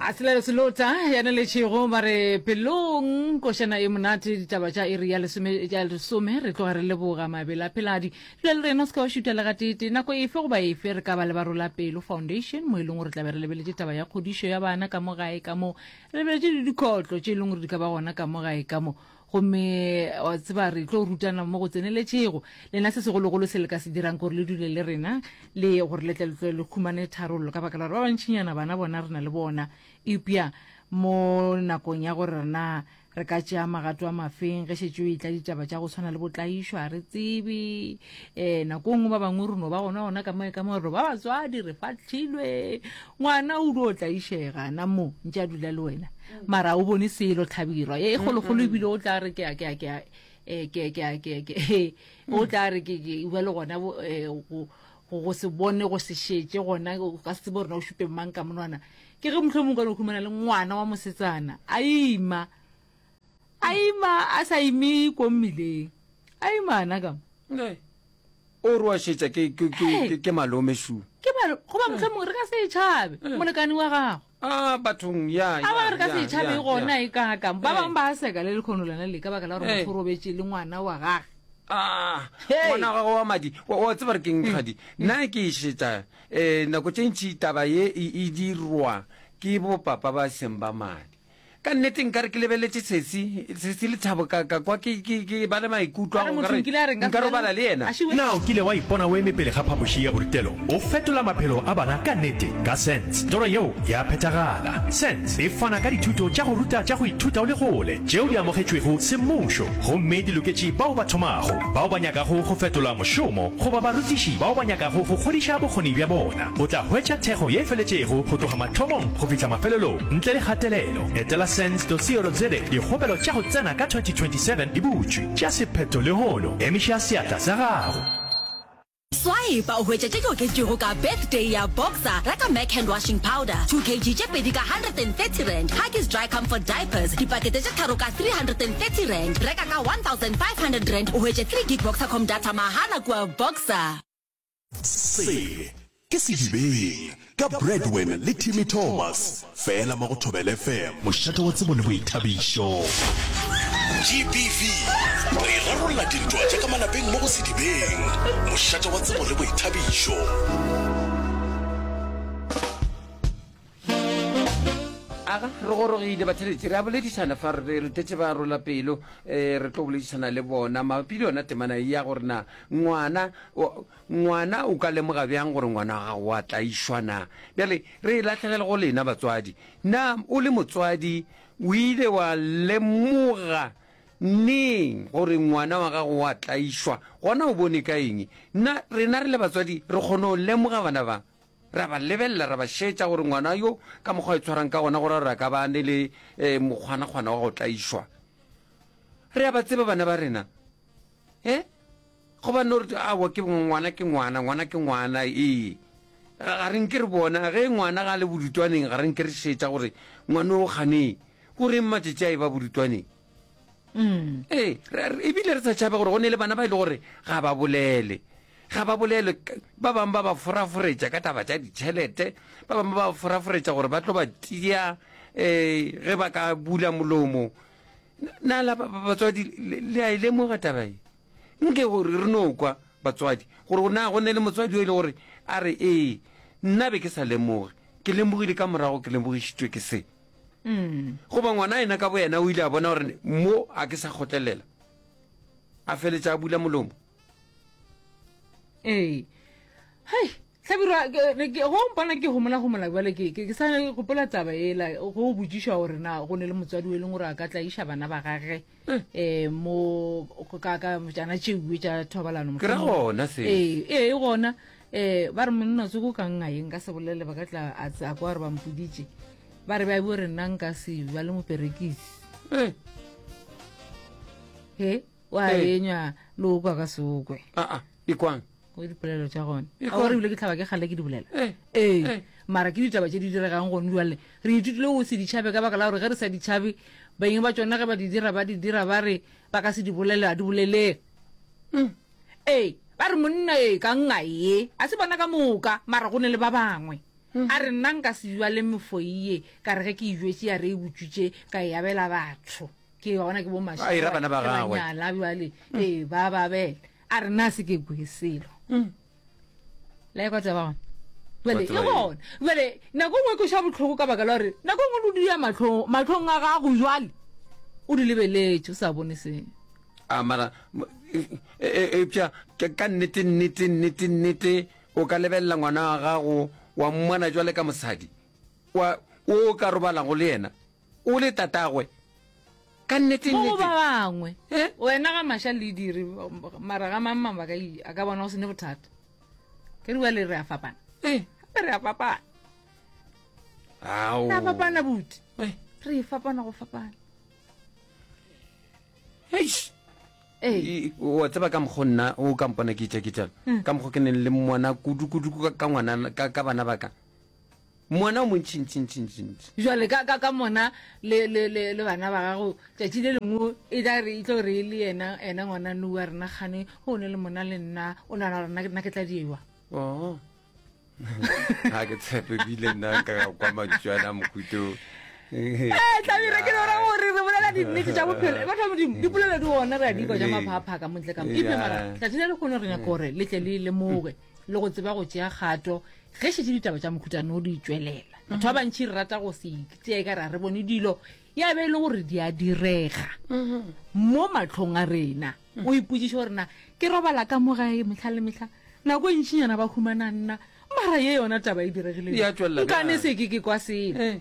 a sela le selota yana le tšhego ba re pelong košana e monate ditaba tša iri ya lesome re tloga re leboga mabele a pheladi dula le rena o se ka wa šuta le gatete nako efe goba efe re ka ba le ba rola pelo foundation mo e leng gore tlabe re lebeletse taba ya kgodišo ya bana ka mo gae ka mo re lebeletse le dikhotlo tše e leng gore di ka ba gona ka mo gae ka mo Gomme, wa tseba, re tlo rutana mo go tseneletšego. Lena se segologolo se le ka se dirang gore le dule le rena, le gore le tle le tlole le humane tharollo, ka baka la gore ba bantšinyana bana bona re na le bona. Eupša mo nakong ya gore rena re ka tšea magato a mafeng ge šetše o etla ditaba tša go swana le bo tlaišo, a re tsebe. eh nako nngwe ba bangwe reno ba gona gona ka moe ka moe re ba batswadi re fatlhilwe ngwana o dio o tlaišega na mo ntse a dula le wena mara o bone selo tlhabirwa e kgologolo ebile o tla re ke a ke a ke a eh, ke ke a ke ke he o tla re ke ke ba le gona bo- eh, go go go se bone go se šetse gona o ka se tsebe gore na o šupe mang ka monwana ke ge motlho mongwe ka no khumana le ngwana wa mosetsana a ima a ima a sa ime ko mmileng a ima ana ka mo o re wa šetša ke ke ke ke ke malome shu ke ba goba motlha mongwe re ka se e tšhabe molekane wa gago a bathong ya a ba re ka se e tšhabe gona e ka ka ba bangwe ba seka le lekgono lana le ka baka la gore motho o robetše le ngwana wa gage Ah, Hey. ngwana wa gago wa madi wa wa tseba re ke nkgadi nna ke e šetša um nako tše ntšhi taba ye e e dirwa ke bopapa ba seng ba madi Ka nnete nkare ke lebeletše Sesi, Sesi Lethabo ka, ka kwa ke, ke, ke ba le maikutlo a go nkare nka robala le yena. Na o kile wa ipona o eme pele ga phapoši ya borutelo, o fetola maphelo a bana ka nnete? Ka Sense, toro yeo ya phethagala. Sense e fana ka dithuto tša go ruta tša go ithuta o le kgole, tšeo di amogetšwego semmušo gomme di loketše bao ba thomago, bao ba nyakago go fetola mošomo goba barutiši bao ba nyakago go kgodiša bokgoni bja bona. O tla hwetša thekgo ye feletšego go tloga mathomong go fihla mafelelong. Ntle le kgatelelo, etela sens.co.za dikgopelo tša go tsena ka 2027 di butšwe. Tšea sephetho lehono, emiša seatla sa gago. Swaepa o hwetše tše di oketšwego ka Birthday ya Boxer, reka Mac Hand Washing Powder, 2 kg tše pedi ka R130, Huggies Dry Comfort Diapers, dipakete tše tharo ka R330, reka ka R1,500 o hwetše 3 gig Boxercom data mahala kua Boxer. Se ke Sedibeng ka Bradwin le Timmy Thomas fela mo go Thobel FM. Mošate wa tsebo le boithabišo. GBV, re rarolla dintwa tša ka malapeng mo go Sedibeng. Mošate wa tsebo le boithabišo. aga re gorogile batheletši re a boledišana fa re retetše ba rola pelo um re tlo boledišana le bona mabapi le yona temana e ya gore na ngwana ngwana o ka lemoga bjang gore ngwana wa gago wa tlaišwa na bjale re e latlhegele go lena batswadi na o le motswadi o ile wa lemoga neng gore ngwana wa gago wa tlaišwa gona o bone ka eng na rena re le batswadi re kgone go lemoga bana ba Ra ba lebelela ra ba šeetša gore ngwana yo ka mokgwa a itshwarang ka gona gore ra ka ba ne le eh, mokgwanakgwana wa go tlaišwa. Re a ba tseba bana ba rena e eh? goba no re awa ke ngwana ke ngwana ngwana ke ngwana ee ga re nke re bona ge ngwana ga le bodutwaneng ga re nke re šeetša gore ngwana o ganeng o reng matšatši a e ba bodutwaneng mm. ee ebile re sa tšhaba gore go ne le bana ba e le gore ga ba bolele ga ba bolele ba bangwe ba ba foraforetša ka taba tša ditšhelete ba bangwe ba ba foraforetša gore ba tlo ba tia um ge ba ka bula molomo na la batswadi le a e lemoga tabae nke gore re no kwa batswadi gore go na go ne le motswadi yo e le gore a re ee nna be ke sa lemoge ke lemogile ka morago ke lemogišitšwe ke se goba ngwana yena ka boyena o ile a bona gore mo a ke sa kgotlelela a feletsa a bula molomo ee hei tlhabirwa go mpona ke gomola gomola bjale ke ke sa gopola taba ela go botsišwa gore na go ne le motswadi o e leng gore a ka tlaiša bana ba gage eh mo ka ka jana tšeuwe tša thobalano ke ra gona se ee ee gona eh ba re monna tsoko ka nna eng ka se bolele ba ka tla a tsa kwa re ba mpoditše ba re ba bo re nna nka se ba le moperekisi Eh, he wa Ee. enywa lo kwa ka sokwe ah, ah, ikwang go dipolelo tša gone a gore ebile ke tlhaba ke gale ke di bolela ee eh, eh. mara ke ditaba tše di diregang gone jale re ithutile go se ditšhabe ka baka la gore ge re sa ditšhabe beng ba tsone ge ba di dira ba di dira ba re ba ka se di bolele a di boleleng mm. ee ba re monna e ka nna ye a se bona ka moka mara go ne le ba bangwe mm. a re nna nka se jwa le mefoie ka re ge ke ijwetse ya re e botsutse ka e abela batho ke yona ke bomasela bana ba gagwe jale ee ba babela a re na se ke bue selo la ekwa tseba gona jale Batho e ba e- gona jale nako nngwe ko sha botlhoko ka baka la gore nako nngwe lo dira matlhong matlhong a gago jale o di lebeletse o sa bone selo a mara m- e- e- eupša ka ka nnete nnete nnete nnete o ka lebelela ngwana wa gago wa mmona jwale ka mosadi wa o ka robalago le yena O le tatagwe? Ka nnete nnete. Mo ba bangwe. Eh? Wena ga masha le dire mara ga mang mang ba ka a ka bona go sene bothata. Ke re wa le re a fapana. Eh, re a fapana. Ao. Re a fapana buti. Eh, re fapana go fapana. Eish. Eh. wa tseba ka mokgo nna o ka mpona ke itša ke tšana hmm. ka mokgo ke neng le mmona kudu kudu ka ngwana ka bana ba ka Mona o montšintšintšintšintši. Jwale ka, ka, ka mona le, le, le, le bana ba gago, tšatši le lengwe e tla re, e tlo re e le yena, yena ngwana nu wa rena kgane, go ne le mona le nna, o nana gore nna, nna ke tla diewa. Oh. ga ke tshepe bile nna ka kwa mantšwana mohuto eh, tlabira ke lora gore re bolela dinnete tša bophelo batho ba modimo dipolelo di gona re a dikwa ja maphaphaka montle ka ebe mara tlati le le kgone re nyaka gore le tle le lemoge le go tseba go tšea kgato ge šetše ditaba tša mokhutano di tšwelela batho ba bantšhi re rata go se tseye ka ra re bone dilo ya be e le gore di a direga mo matlhong a rena o ipotsiše gore na ke robala ka mo gae metlha le metlha nako e ntšhinyana ba humana nna mara ye yona taba e diregilenkane se ke ke kwa sele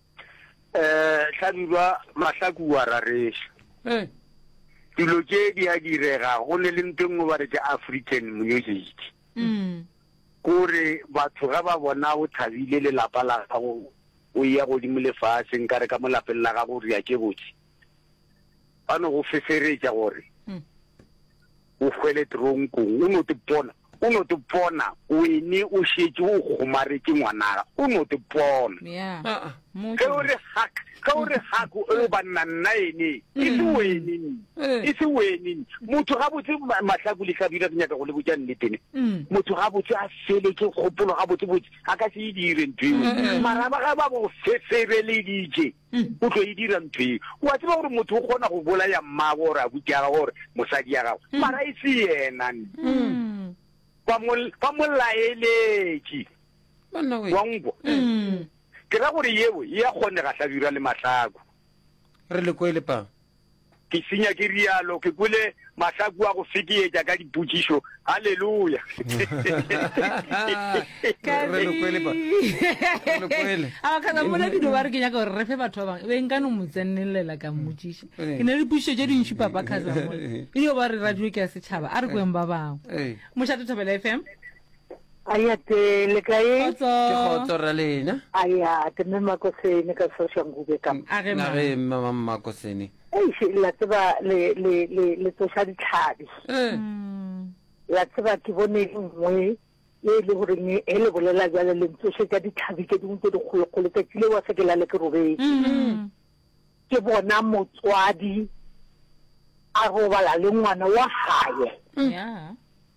Eh, Hlabirwa Mahlaku wa rareša. Eh. Dilo tše di a direga go ne le ntho nngwe ba re ke African music. Mm. Kore batho ga ba bona o thabile le lapa la gago o ya godimo le fase nka re ka mo lapeng la gago re ya ke botse. ba no go feferetša gore o hwele tronkong o no te pona o no te pona o ene o šetše o kgomaretse ngwanaga o no te pona ge o re hak ge o re hak o le banna nna ene e se wene e se wene motho ga botse mahlaku le hlabile ke nyaka go le botša nnetene motho ga botse a fele ke kgopolo ga botse botse a ka se e dire ntho eo maraba ga ba go fefereleditše o tlo e dira ntho e wa tseba gore motho o kgona go bolaya mmago gore abuti ya gago gore mosadi ya gago mm. mara e se yena mm. ba mo laeletše wa nkwa mm. ke ra gore yeo e ya kgonega hlabirwa le mahlako re le ko e lepang Ke senya ke rialo, ke kwele mahlaku a go fekeetša ka dipotšišo. Haleluya! Re lo kwele pa. Re lo kwele. a ba kgana mola video ba re ke nyaka gore re fe batho ba bangwe be nka no mo tsenelela ka mmotsiša Eh. ke ne le dipušišo tše dintši papa kgaza mola e dio ba re radio ke ya setšhaba a re kweng ba bangwe Eh. mošate thobela fm Aya te le kae? Kgotso. Ke kgotso ra lena. Aya te me makosene ka sosha ngube ka. A re ma. Re mama makosene. Ei she la tseba le le le le tsosha ditlhabi. Eh. La tseba ke bone nngwe ye le gore ne he le bolela jale le ntsoshe tsa ditlhabi ke dingwe tse dikgolo kgolo tsa tsile wa se ke la le ke robetse. Ke bona motswadi a robala le ngwana wa hae. Yeah.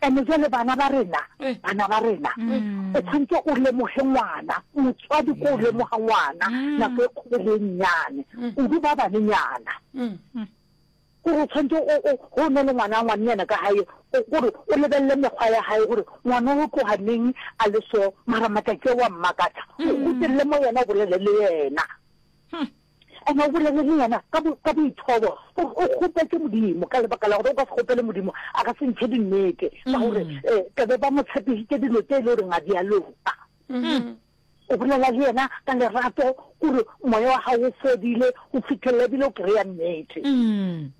Ene jwale bana ba rena, bana ba rena, o tshwanetse o lemoge ngwana, motswadi ko o lemoga ngwana, nako e kgolo e nnyane, kudu ba banenyana. Kore o tshwanetse o, o, go ne le ngwana, ngwanenyana ka gae, o kore o lebelele mekgwa ya gae, gore ngwana o tloga neng a le so, mara matsatsi a wa mmakatsa. O gutelele mo yena, o bolele le yena. And o bolele le yena ka bo, ka boithobo gore o kgopetse Modimo ka lebaka la gore o ka se kgopele Modimo a ka se ntshe dinnete ka gore um mm. eh, tebe ba mo tshepisitse dilo tse e le goreng a di a loka mm-hmm. o bolela le yena ka lerato gore moya wa gago o fodile o fitlhelela ebile o kry-a nnete mm.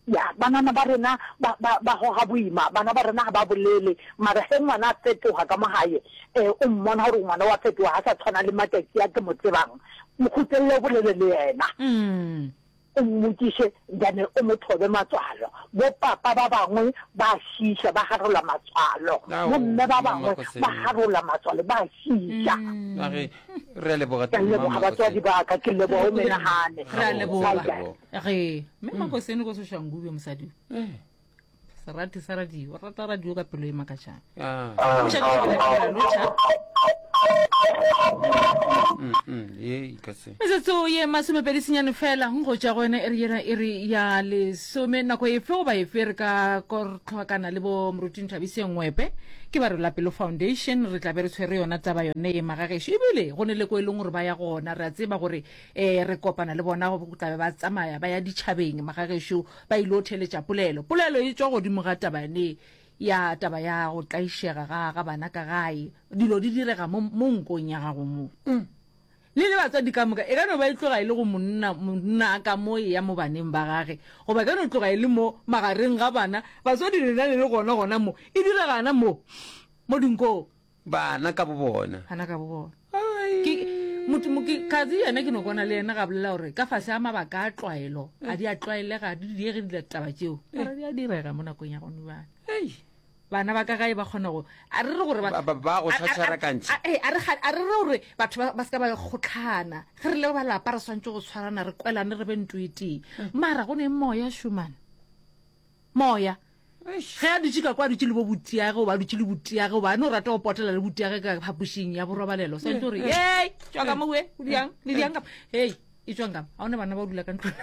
Ya, banana ba rena ba, ba, ba goga boima, bana ba rena ga ba bolele, mara ge ngwana a fetoga ka mo gae, e, o mmona gore ngwana wa fetoga, ga sa tshwana le matšatši a ke mo tsebang, mo khutlelele o bolele le yena. Mm. o mmotšiše then o mo thobe matswalo bo papa ba bangwe ba šiša ba garola matswalo Ao, bo mme ba bangwe Mama Kosebe. ba garola matswalo ba šiša Mm. a re re a leboga ke a teng, leboga Mama batswadi Kosebe. ba ka ke leboga o menagane Re a leboga. Ga botse, Ga botse. ge mme mm. makosene ko soshangube mosadi eh. serati sa radio rata radio ka pelo e makatšang ah. metsotso ye masomepedi senyane fela go ja gone e re yena e re ya lesome nako efe goba efe re ka kortlhwakana le bo moruting thabiseng ngwepe ke ba re lapelo foundation re tlabe re tshwere yona taba yone e magageso ebile go ne le ko e leng gore ba ya gona re a tseba gore ee re kopana le bona go tla be ba tsamaya ba ya ditšhabeng magagešo ba ile o theletša polelo polelo e tswa godimo ga taba yane ya taba ya go tlaišega ga ga bana ka gae dilo di direga mo mo nkong ya gago mo mm. le le batswadi ka moka e ka no ba e tloga e le go monna monna a ka mo e ya mo baneng ba gage goba e ka no tloga e le mo magareng ga bana batswadi lena le le gona gona mo e diregana mo mo dinkong Bana ka bobona. Bana ka bobona. Ke, motho, mo, ke, Kazi yena ke no kwana le yena ga bolela gore ka fase a mabaka a tlwaelo, a di a tlwaelega, a di diege di taba tšeo. Mara di a direga mo nakong ya gone bana. Hey. Bana ba ka gae ba kgona go, a re re gore ba, ba, ba go tshwatshwara kantši. A, a, a, a, re, a re re gore batho ba, ba se ka ba kgotlhana. Ge re le ba lapa re swantse go tshwarana, re kwelane, re be ntoetee. Mara go ne moya shumana. Moya. Ge a dutše ka kwa, a dutše le bo butiage, goba a dutše le butiage, goba a no rata go potela le butiage ka phapošing ya borobalelo. Sa ntse o re, Hei, tšwa ka mo we, o diang, le diang ka Hei, e tswang ka mo. A one bana ba o dula ka ntlong.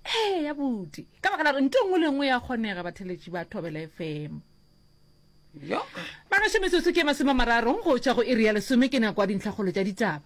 ee ya buti ka baka la gore nto nngwe le nngwe ya kgonega batheletši ba thobela fm bagašo metsotso ke masome mararong go tšwa go iri ya lesome ke nako ya dintlhakgolo tša ditaba